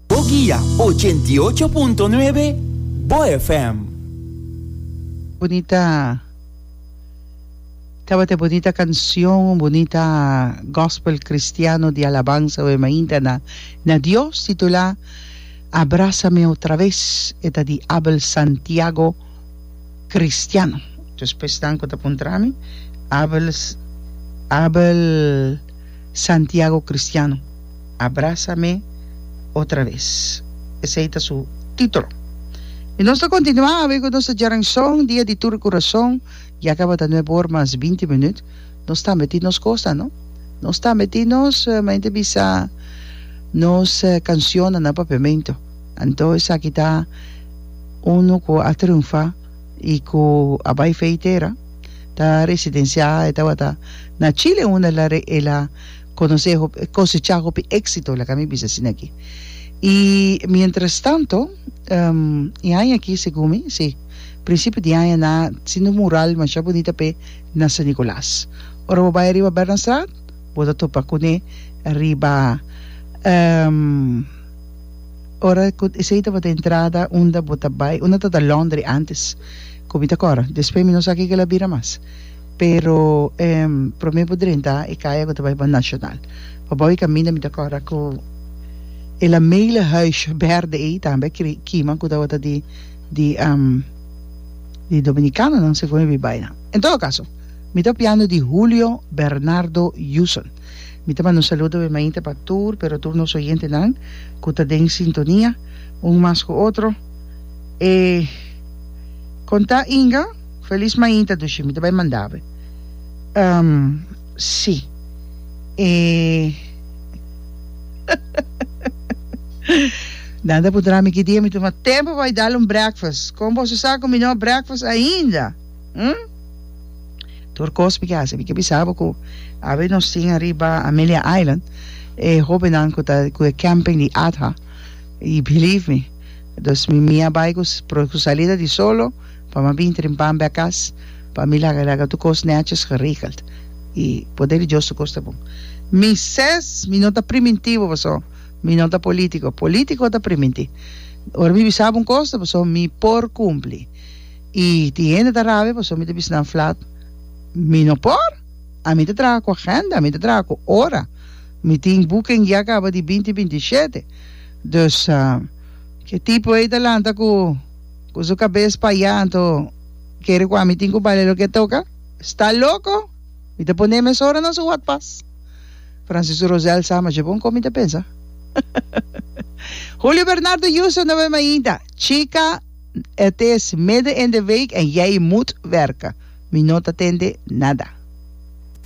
Bo guia ochenta i ocho punto nuebe Bo FM. Bunita Tabata e bunita canción, un bunita gospel cristiano di alabansa oe mainta na na Dios titulá Abrázame otra vez e ta di Abel Santiago Cristiano. Djos pesnan cu ta puntrami Abel Abel Santiago Cristiano. Abrasa mi otra ves. Esei ta su titulo. I nos ta kontinuá awe ku nos djaranshon dia di tur kurason. Ya kabata nueb or mas binti minüt. Nos tambe tin nos kosnan, no? Nos tambe tin nos, men ta bisa, nos kanshonnan na papiamentu. Anto esaki ta unu ku a triunfá i ku a bai feitera. Ta residensiá, e tabata na Chile unda el a. Conoce hopi, cosecha hopi exito, laga mi bisa asina aki. Y mientras tanto, um, e aña aki, segun mi, si, principio di aña na siendo un mural masha bunita p'e na San Nicolas. Ora bo bai riba Bernardstraat, bo ta topa cune riba, um, ora cu esey tabata entrada unda bo ta bai, unda tabata laundry antes, cu mi ta cora, despues mi no sa kico el a bira mas. Pero e prome bo drenta e kaya ku ta bai pa National. Pa bou e kaminda mi ta kòrda ku e lamele huis bèrdè ei tambe a kima ku tabata di di di dominikanonan segun e bin bai nan. En todo kaso mi ta opiando di Julio Bernardo Yuson. Mi ta manda un saludo obviamente pa tur pero tur nos oyentenan ku ta den sintonia un mas ku otro. E kon ta Inga? Felis mainta dushi mi ta bai mandabe. Um si e nan ta puntra mi ki dia mi tuma tempo pa bai dal un breakfast kon boso sa ku mi no a breakfast ainda hm tur kos mi ke hasi mi ke bisa bo ku awe nos tin ariba Amelia Island e hobennan ku ta ku e camping di adha y believe me dos mi mi a bai ku salida di solo pa ma bin trin pan bè kas, pa mi laga laga tur kos nètjes geregeld i poder di Dios tur kos ta bon. Mi ses, mi no ta primintivo paso mi no ta politico, politico ta priminti. Ora mi bisa bo un kos ta paso mi por kumpli i tin hende ta rabia paso mi ta bisa nan flat mi no por, ami ta traha ku agenda, ami ta traha ku ora, mi tin buke en guia kaba di binti binti shete, dus ke tipo ei ta lanta ku. cu su cabes paya anto kere cu ami tin cu bale loke toca? Sta loco? Mi ta pone mes ora na su hot pas. Francisco Rosel sa, ma dje bon con mi ta pensa. Julio Bernardo Justo no bem ainda. Chica, het is midden in de week en jij moet werken. Mi no ta tende nada.